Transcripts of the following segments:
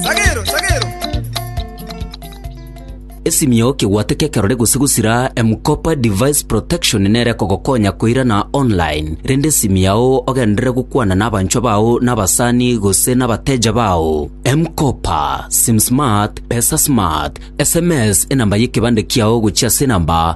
Sagero, sagero! Esimio kegwate kekerore gose gosira M-Kopa Device Protection nere kogokonya koirana online, rende esimi yao ogenderere gokwana n'abanchwa bao n'abasani gose n'abateja bao. M-Kopa, SimSmart, PesaSmart, SMS enamba y'ekebande kiao gochia ase enamba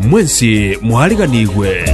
Mwensi mwariganigwe.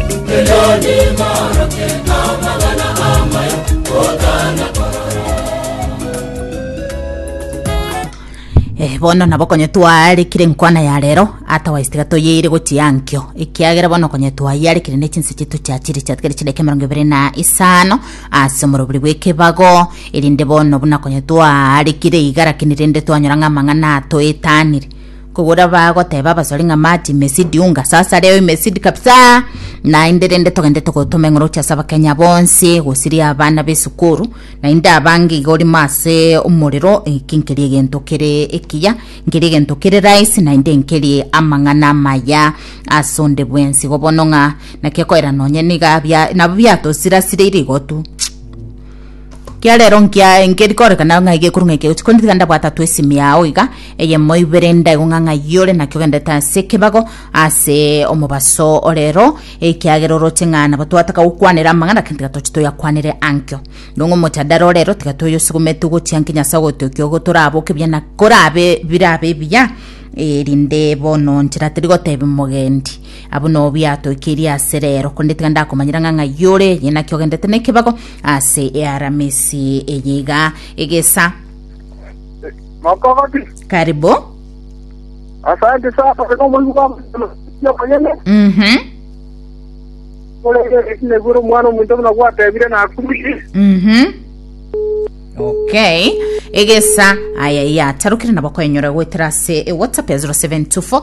Eh, bono nabo konye twarekire nkwana ya rero otherwise tiga toyeire gochia nkio ekiagera bono konye twayarekire ne chinse chitu chia chiri chiatigere chideke mirongo ibere na isano ase omorobiri bw'ekebago erinde bono buna konye twarekire igara kini rende twanyora ng'a amang'ana atoetanire Kogora bagoteba abasore ng'a mati mesidi unga sasa leo imesidi kabisa naende rende togende togotoma eng'oro chia sabakenya bonsi gosiria abana b'esukuru naende abange iga orimo ase omorero eki nkeri egento kere ekiya nkeri egento kere rahisi naende nkeri amang'ana amaya ase onde bwensi igo bono ng'a naki ekoera nonye niga bia nabo biatosirasireire igo tu. Ekiagera ero nkia- nkeri korekana ng'a iga ekorwa ng'a eke egochi korende tiga ndabwate atoe esimi yao iga eyemo ibere ndaigwe ng'a ng'a iye ore naki ogenderete ase ekebago ase omobaso ore ero ekiagera oroche ng'a nabo twataka gokwanera amang'ana lakini tiga tochi toyakwanere ankio. Nong'o omojadara ore ero tiga toyosugumete ogochia nki Nyasae ogotiokia ogo toraboke buya na korabe birabe buya erinde bono nchera terigotebi mogendi Abwo no biatoikerie ase rero, korende tiga ndakomanyera ng'a ng'ai ore, eye naki ogendete nekebago ase earamisi eye iga egesa. Mokogoti. Karibu. Asante sana kwa sababu Mungu baba ya manyene. Mhm. Kule ile ile guru mwana mtu mna kwa tebile na kumishi. Mhm. Okay. Egesa aya yatarukire nabo kwenyora gwetera ase e WhatsApp ya 0724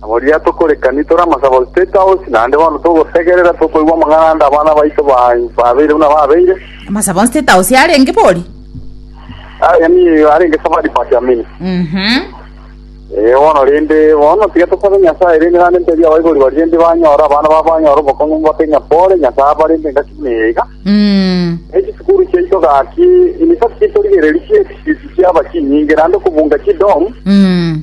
Na boria tokorekani tore amasabo ase State House, naende bono togosegerera tokoigwa amang'ana ande abana baito ba- babeire buna babeire. Amasabo ase State House yarenge bori? Ah, yaani arenge safari part ya mini. Mhm. Eh, bono rende, bono tiga tosabe Nyasaye rende naende ntebi abaibori baria rende banyore abana babo banyore obokong'u mbake ng'a pole, Nyasae aba rende ngaki buna eye iga. Mm. Na echisukuru chiaito gaki, in fact, torigereria chiefisi chiaba chinyinge, naende okobunga chidom, Mm.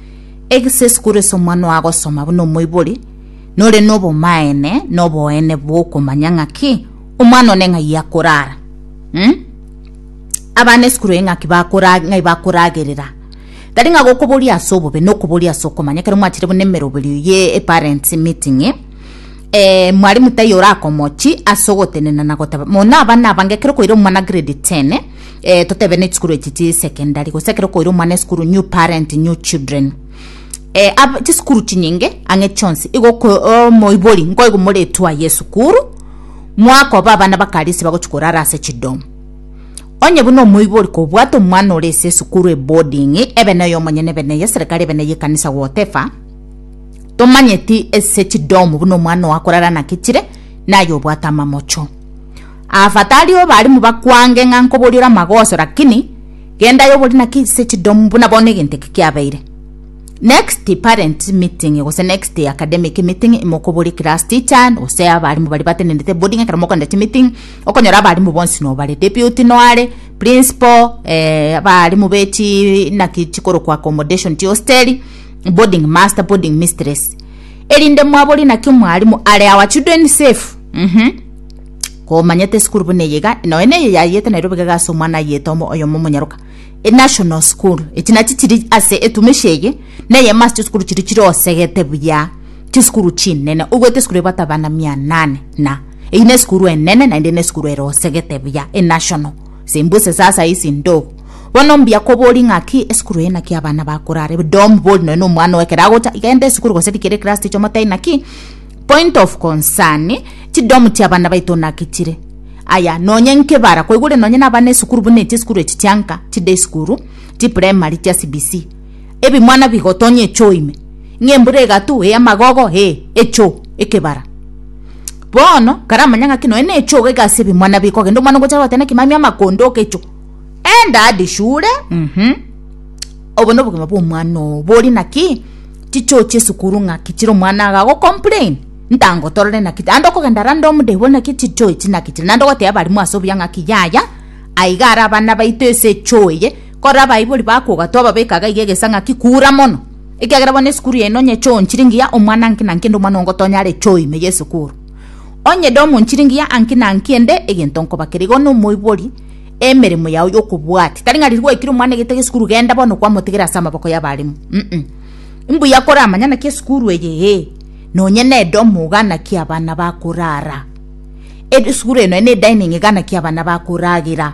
Egese esukuru ase omwana ogo agosoma buna omoibori, nore nobomaene noboene bwokomanya ng'aki omwana one ng'ai akorara. Hmm? abana esukuru eye ng'aki ng'ai bakoragerera tari ng'a gokoboria ase obobe nokoboria ase okomanya kero mwachire buna emeroberio ye eparents meeting eh eh mwalimu taiyo orakomochi ase ogotenena na goteba muna abana abange kero kwaire omwana grade ten eh, totebe ne chisukuru echi chi secondary gose ekero okoira omwana esukuru new parent new children eh, ab- chisukuru chinyinge ang'e chionsi igo oko- omoibori nkoigwa moretwa ye esukuru mwakoba abana bakarisi bagochi korara ase chidomu onye buna omoibori kobwate omwana ore ase esukuru eboarding ebe noyo omonyene ebe neye eserikari ebe neye ekanisa whatever tomanyeti ase chidomu buna omwana oakorara naki chire naye obwate amamocho Aafadhali abalimu bakwange ng'a nkoboria ore amagoso lakini genda aye obori naki ase chidomu buna bono egento eke kiabeire. Next parent meeting gose next academic meeting ime okoborie class teacher gose abalimu baria batenenete bori ng'a ekero mokogenda chimeeting okonyora abalimu bonsi nobare deputy noare, principal, eh abalimu be chi naki chikorokwa accommodation chihosteri, boarding master, boarding mistress. Erinde mwabori naki mwarimu are our children safe mm-hmm. Komanyete school buna eye iga noe neye yayete Nairobi gaga ase omwana ayete omo oyomo omonyaroka e national school echi nachi chiri ase etumishi eye neye masi chisukuru chiri chiri osegete buya chisukuru chinene ogwete esukuru ebwate abana mia nane na eyi na esukuru enene naende na esukuru ere osegete buya e national Simbuse sasa isi ndo. Bono mbuya kobori ng'aki esukuru eye naki abana bakorare. Dom bori nonya omwana owe ekero agocha igende esukuru gose rikere class ticho motai naki point of concern chidom chia abana baito naki chire. Aya nonya nkebara koigure nonya na abana esukuru buna echi esukuru echi chianka chi day school chi primary chia CBC. Ebimwana bigotonya echo ime. Ng'a embura egatu ee amagogo ee echo ekebara. Bono, karamanya ng'aki nonya nechogo iga ase ebimo, nabi kogenda omwana ogocha goeta nekimamia amakondo okecho, Enda ade shule, mhm. Obo nobogima bwomwana oo bori naki, chichochi esukuru ng'aki chire omwana iga agocomplain, ntangotorore naki, naende okogenda rande omodebi bori naki chichoo echi naki chire, naende ogotebia abarimu ase obuya ng'aki yaya, aiga are abana baito ase echoo eye, korora abaibori bakoga twababeka iga iga egesa ng'aki kura mono. Ekiagera bono esukuru yaino onye chionchiri ngiya omwana nki na nki ende omwana oo ngotonya are choo ime y'esukuru. Onye ede omonchiri ngiya anki na anki ende egento nkobakera igo nomoibori emeremo yao y'okobwati. Tari ng'a riria gwaikire omwana egete gesukuru genda bono kwamotigera ase amaboko y'abaremu mm. Mbuya koramanya naki esukuru eye ee nonye nedomo iga naki abana bakorara. Esukuru eno ene edining iga naki abana bakoragera.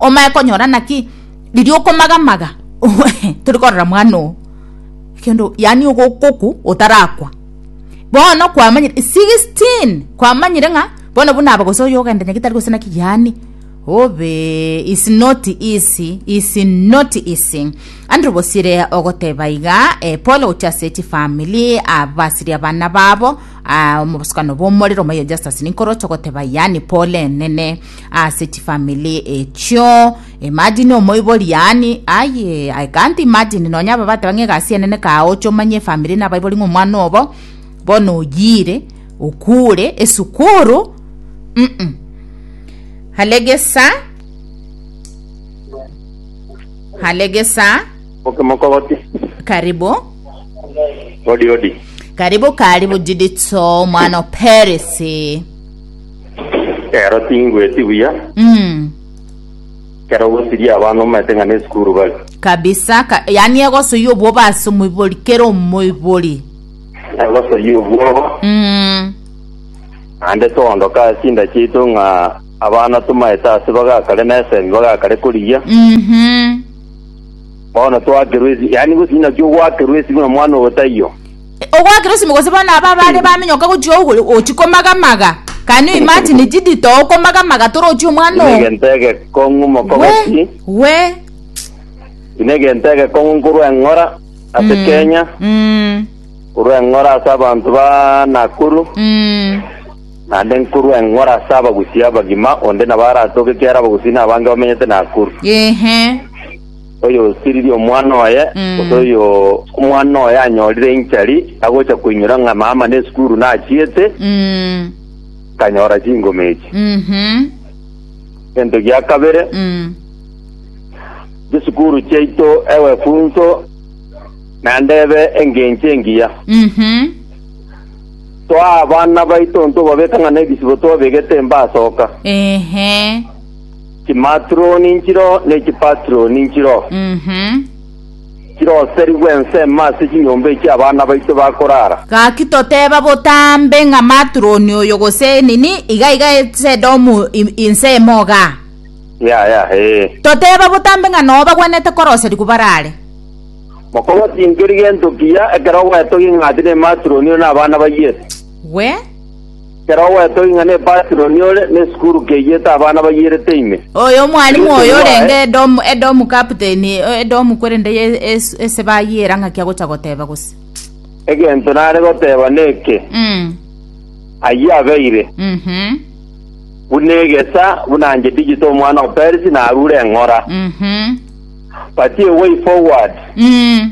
Omanye konyora naki riria okomagamaga tori korora mwana oo kendo yaani ogokoku otarakwa bono kwamanyire 16 kwamanyire ng'a bono buna aba gose oyo ogenda nyagetari gose naki yaani obee is not easy is not easy Andrew Bosire ogoteba iga eh, pole gochia ase echi family abasirie abana babo ah, omobosokano bw'omorero omoyo Justus Nikoroch ogoteba yaani pole enene ase chifamily echio imagine omoibori yaani aye i can't imagine nonya aba bateba ng'a egasi enene kaoche omanye efamily na abaibori ng'a omwana obo bono oyiire okure esukuru mm hale gesa hale gesa Okay, mokogoti. karibu Odi odi. karibu karibu jidito mwana operesi Ero tingweti buya, Mm. ekero ogosiria abana omanyete ng'a nesukuru bare. Kabisa ka, yani egosoyia obwoba ase omoibori kera omoibori. Egosoyia obwoba, Mm. naende toondoka ase chinda chiaito ng'a abana tomanyete ase bagakare na esegi bagakare korigia. Mhm. Bono twakerwa esi, yani gose inaki ogwakerwa esi buna mwana ogo taiyo. Ogwakera osime gose bono aba abare baminyoka gochia ogoro ochi komagamaga can you imagine chidito okomagamaga torochi omwana Ine oo egento egekong'u mokogo we ki? we Ine egento egekong'u nkorwa eng'ora ase Mm, Kenya, mm, nkorwa eng'ora ase abanto ba Nakuru, mm. naende nkorwa eng'ora ase abagusii abagima, onde nabo aratoke ekiagera abagusii nabange bamenyete Nakuru. ehe oyosiririe omwana oye, Mm. gose oyo omwana oye anyorire enchari agocha koinyora ng'a mama nesukuru nachiete, Mm. kanyora chingoma echi. Mhm. Egento gia kabere, Mm. chisukuru chiaito ewefunso naende ebe engencho engiya. Mhm. Toa abana baito ntobabeka ng'a nebisibo twabegete mbasoka. Ehe. Chimaturoni nchiro ne chipaturoni nchiro, chiroserigwe ensemo ase chinyomba echi abana baito bakorara. Gaki toteba botambe ng'a maturoni oyo gose nini iga iga esedomu ensemo iga. Yaya, yeah, ee. Eh. Toteba botambe ng'a noo bagwenete koroserigwa barare. Mokong'u tinkeri gento kiya ekero ogwetogia ing'ati ne maturoni oyo na abana bayio. Gwe. Kera ogoetwa ing'ana Ebasiloni ore nesukuru keiete abana bayierete ime. Oyo omwalimu oyo orenge Edomu, Edomu captain, Edomu kwerende ye es- ese bayiera ng'aki agocha goteba gose. Egento nare goteba neke, Mm. ayio abeire Mhm. buna egesa buna nche digital omwana o Perisi narure eng'ora. Mhm. But a way forward. Mm.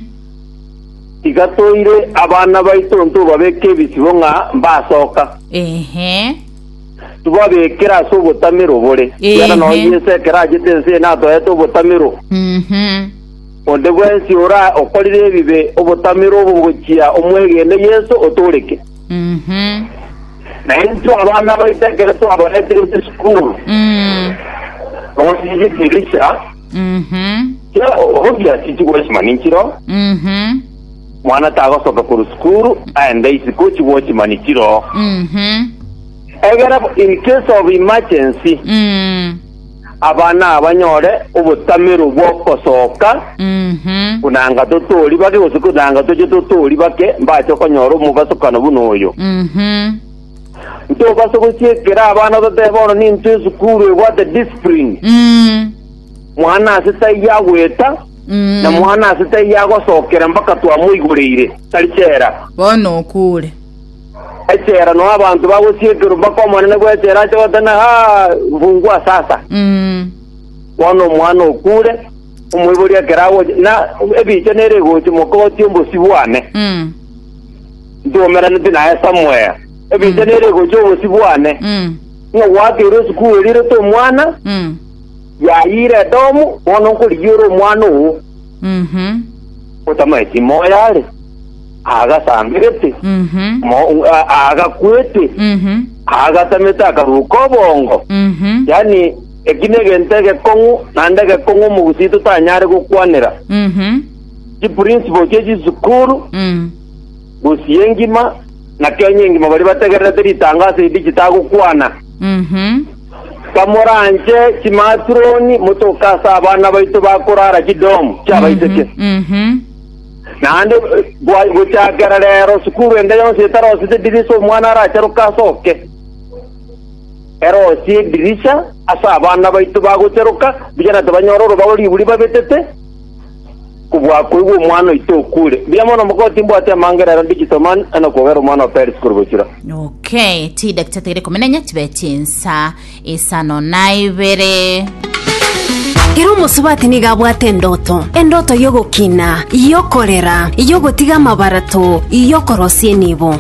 Tiga toire abana baito ntobabeke ebisibo ng'a mbasoka. Ehe. Tibabekere ase obotamero obore, ekiagera nonya Ehe. Yeso ekero achete ense eye natoete obotamero. Mhm. Onde bwensi ora okorire ebibe, obotamero obo bogochia omwegene Yeso otoreke. Mhm. Na intwe abana baito ekero twabaretire chisukuru, Mm. nonya chidirisha, Mhm. Kera omonto yasichi gwochima ninchiro, Mhm. mwana tagosoka korwa sukuru aende isiko chigwochima nichiro. Mhm. Egera bo in case of emergency, Mm. abana abanyore obotamero bw'okosoka Mhm. buna anga totori bake gose buna anga toche totori bake mbache konyora omogasokano buna oyo. Mhm. Ntobasa gochiikera abana ototebe bono nintwe esukuru ebwate discipline. Mm. Mwana ase taiyo agweta na Mm. mwana ase taiyo agosokera mpaka twamoigoreire, tari chera. Bono okure. Echera no abanto bagochiekerwa mpaka omonene bw'echera ache gotena ha mfungua sasa. Mm. Bono omwana okure, omoibori ekero agocha na ebicha nere egochimoka ogotia ombosibwane. Mm. Ntwomeraneti naye somewhere. Ebiita Mm. nere egocha obosio bwane. Mm. Ng'a gwakeire esukuru erirete omwana, Mm. yayire Edomu, bono nkorigia ore omwana oo. Mhm. Otamaeti moyo are. Agasamberete. Mhm. Mo- a- agakwete. Mhm. Agatamete akaruka obongo. Mhm. Yaani, eki negento egekong'u, naende egekong'u omogusii totanyare gokwanera. Mhm. chiprinsipol chie chisukuru, gusii engima, na Kenya engima baria bategererete ritango ase edigital agokwana. Kamoranche chimaturoni motoke ase abana baito bakorara chidom chiabaiseke. Naende gochakera rero sukuru ende yonsi etarosete edirisa omwana aracharoke ase oke. Erosie edirisha ase abana baito bagocharoka, mbuya na tibanyora orobago riburi babetete, Kobwakoigwa omwana oito okure, mbuya mono omogoko timbwati amanga erero ndichisoma na kogera omwana o Peris korwa bochura. Okay, chidakika tigere ikomi na enye chibe chinsa isano na ibere. Kera omosubati nigo abwate endoto, endoto y'ogokina, y'okorera, y'ogotiga amabarato, y'okorosia enibo.